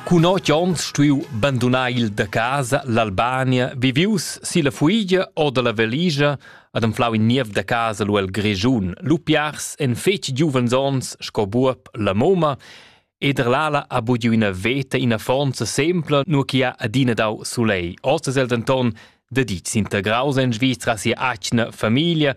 Cun otg onns stuiu bandunar il da casa l'Albania, vivius silla fuigia o dalla valigia ad anflau in niev da casa lu el Grischun. Lu piars en fetg giuvens onns sco buob la moma ed er l'ala ha bugiu ina veta ina fonza sempla, nur che ha adina dau sulei. Oz es el denton da ditg s'integraus en Svizra sia atgna famiglia,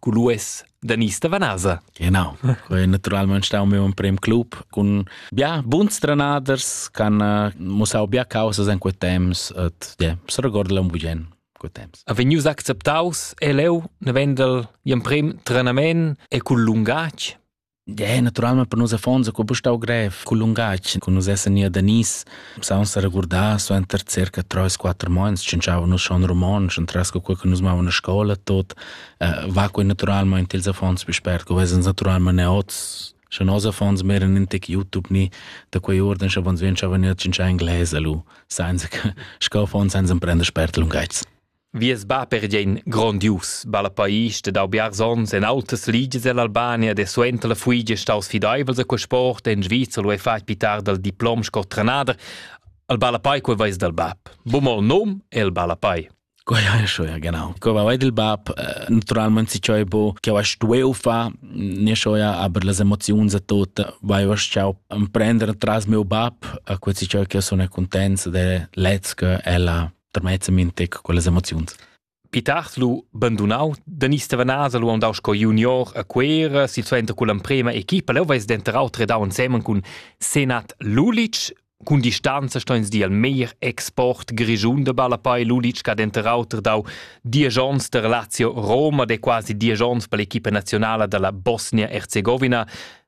Culues da Nista Vanasa. Genau. Quei naturalmente stau meu in prem club con bia buns trenaders can uh, musau bia causas in quei temps et yeah, se regorda un bugen quei temps. A vegnius acceptaus e leu ne vendel in prem trenament e cul lungatg É naturalmente per nus affons co bu stau grev cul lungatg co nus essan gnir da Nice saun sa regurdar suenter circa 3-4 mans tschintschava nus schon romontsch und tras co que nus mavan a scola tot uh, va coi naturalmente ils affons più spert co vesens naturalmente neots Sche nos affons meran in tec YouTube ni da quei orden sche vons vien schavan ir tschintschà inglese lu, sainza che sco affons sainza prender spert lungaits. Vies bab era gian grondius, balla pais ed ha biars onns en autas ligias ell'Albania de suenter la fuigia staus fideivels a quei sport en Sviza lu ei fatg pitar dal diplom sco trenader. El balla pai quei veis dal bab. Bum il num e el balla pai. Quei hai schon, ja genau. Ko va il bab, eh, naturalmente si ciò bo, che va stueu fa, ne schon ja, aber las emozioni za tot, vai va ciao prendere tras mio bab, a questi ciò che sono contents de lezca ella termezza mintec quellas emoziuns. Pitars lu bandunau, Denis Stevanasa lu andau sco junior a Cuera, silsuenter con l'emprema equipa, leu veis denterau tredau ensemen cun Senat Lulic, Cun distanza sto ins dir il meir export grischun de Ballapai Lulic che ha denter auter dau diesch onns der Lazio Roma, de quasi diesch onns per l'equipa nazionala dalla Bosnia-Herzegovina.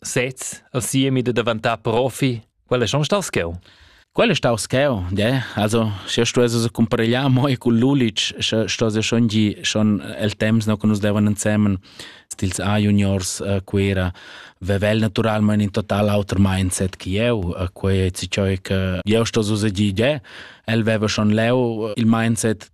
Sez, al siemi da daventà profi, quel è schon star scheu. Quel è stau scheu, de? Also, se stuesses comparegliar moi cul Lulic, sche stuesses schon gi schon el temps no che nus devan insemen stils A juniors uh, Cuera, vevel naturalment in total auter mindset che eu, uh, quei è ciò che eu stuesses gi de? El veva schon leu il mindset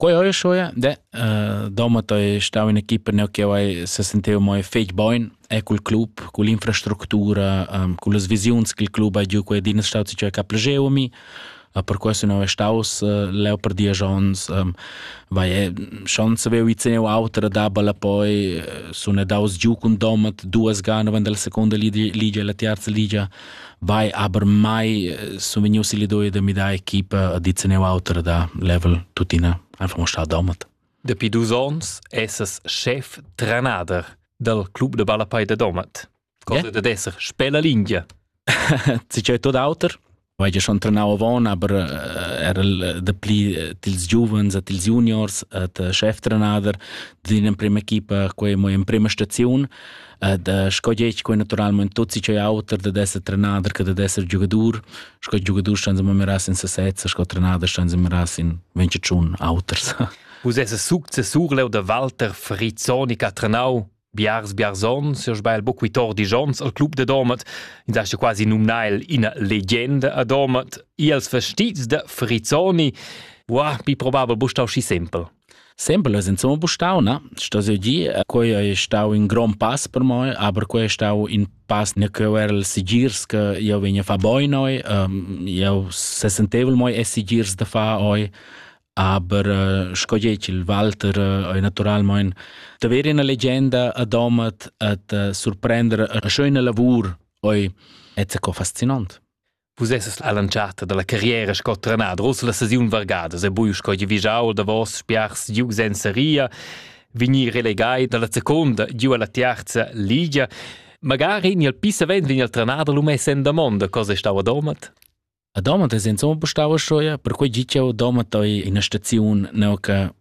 Quei ei schue, de. Domat ei stau in'equipa neu che ei sesenteva mo fetg bein e cul club, culla infrastructura, cullas visiuns ch'il club ha giu quei di è stau che ha plascheva mi. Per questo non è staus leu per diesch onns. Vai, schon savevo ir zeneu auter dabal e poi sun daus giu cun Domat duas ga naven dalla seconda ligia, ligia e la tiarza ligia. Vai, aber mai sun vegnius il idea da midar equipa a dit neu auter da level tuttina einfach mo stau domat. Dapi dus ons essas chef trenader dal club de Ballapei de Domat. Cosa yeah. da esser spella lingia. Ti c'è tot auter. Vai ja schon trenau avon, aber eh, era de pli eh, tils giuvens et tils juniors et eh, cheftrenader din in prima equipa, quei mo in prima staziun. Ed uh, sco gec quei naturalment tutti c'è auter da esser trenader che da esser giugadur. Sco giugadur stan se meras in sesezza, sco trenader stan se meras in venche tschun auters. Vus esse successur leu da Walter Frizzoni che ha trenau biars biarzon, se sbail buc Vitor Dijons al club de Domat, in sa quasi numnai ina legenda a Domat, i als vestits de Frizzoni, Wow, bi probabel bustau schi simpel. Sempel es insomma bustau, na? Sto jeu dir, quei ei stau in grond pass per moi, aber quei è stau in pass ne cheu era il sigirs che io vegna fa boin oi, um, io se sentevel moi e sigirs da fa oi, aber uh, sco dieci il Walter uh, oi naturalmein da ver una leggenda a domat at uh, surprender a schöne lavur oi et se co fascinant. Vus esses la lanciata dalla carriera sco trenader, ussa la sesiun vargadas e bui sco givigiau davos spiars giug senza ria, vignir relegai dalla seconda giu alla tiarza ligia. Magari ni al pisavent vegn al trenader lu mess en damonda cosa stau a Domat? A Domat es insomma stau schuia, perquei gi ch'eu Domat ei ina staziun neu che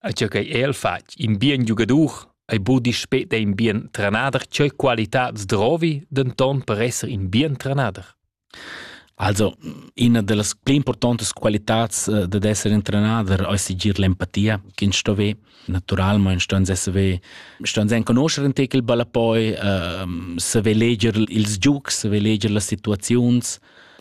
A tgei ch'ei el fatg, in bien giugadur, ei budi speta in bien trenader, tgei qualitad drovi, denton per esser in bien trenader. Also, una delle più importanti qualità eh, di essere un trenader è sigir l'empatia che sto ve naturalmente sto se sto se conoscere in te il balla poi uh, se ve leger ils giugs se ve leger le situazioni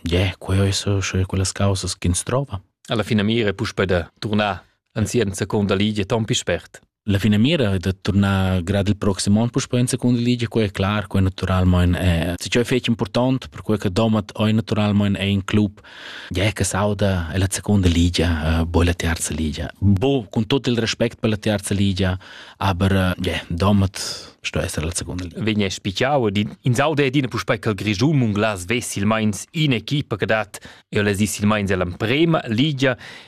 yeah, quelle sono quelle cose che si trova alla fine mira push per tornare anzi enzaconda ligia ton pi spert. La finamira è da tornar grad il prossimo anno puspei in seconda ligia, quella è clar, quella naturalmente è. Ciò è fece importante per quella che domat è naturalmente è in club, ja che sauda è la seconda ligia, eh, poi la terza ligia. Bo, con tutto il rispetto per la terza ligia, aber ja, domat sto essere la seconda ligia. Vegna spicciau in sauda è dina puspei che il Grisum un glas ves il meins in equipa che dat e les is il meins è l'emprema ligia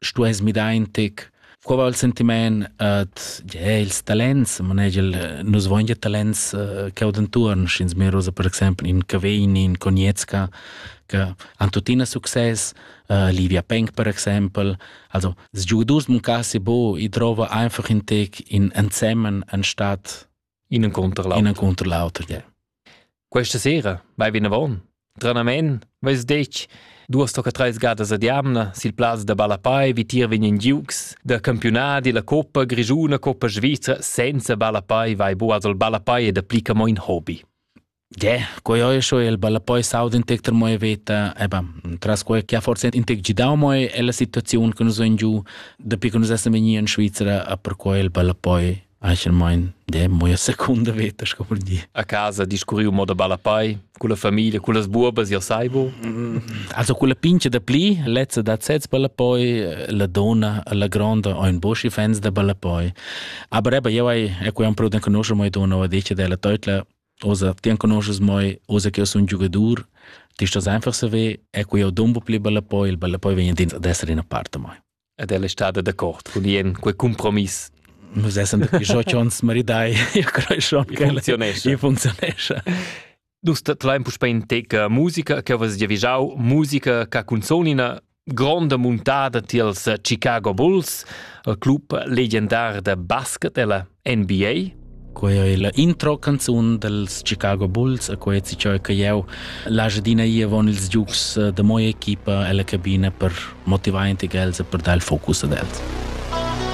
stuess midar in tec Qua va il sentiment ad ja, ils talents, manegel, nus voin ja talents uh, che od entuorn, sch'ins merosa per exempel in Cavegni, in Conietska, che han tuttina success, uh, Livia Penk per exempel, also des Giugadors muncassi bo, i trova einfach in tec in ensemmen anstatt in un contro l'altro. In un contro l'altro, yeah. Questa sera vai vinavon. Tranamen veis detg duas tocca treis gadas ad jamna sil plaz da ballapai vi tier vegnan giugs da campiunadi la coppa grigiuna coppa svizra senza ballapai vai bu als ballapai e dapli che mo in hobby. Ge, quei ei scho il ballapoi saud in tec moi veta, eba, tras quei che ha forse in tec gidau moi è la situazione che nus en giu, da pi che nus essem vegni in Svizzera, a per quei il ballapoi Eichelmein de moia secunda veta sco vul dir. A casa discurriu moda balla pai, culla famiglia, cullas buobas, io sai bu. Mm, also culla pincha da pli, lezza da sez balla poi, la donna, la gronda o in boschi fans da balla poi. Aber eben, io hai, e qui am proud conoscer moi donna, va dice della teutla, osa ti conosces moi, osa che io sun giugadur, ti stos einfach se ve, e qui io dumbo pli balla poi, il balla poi vegn ad essere in a parte moi. Ed ella è stada d'accord cun Ien, quei compromiss. Nus essen dapi 18 onns maridai, io creschon che funzionesce. E funzionesce. Dus tlaim puspei in teca musica che vas giavigiau, musica che cunzonina gronda muntada tiels Chicago Bulls, il club legendar da basket ella. NBA? Quei ei la intro canzun dals Chicago Bulls e quei si cheu che jeu lascio d'ina ir avon ils giugs eh, da moia equipa ella cabina per motivar enti els e per dar il focus ad els.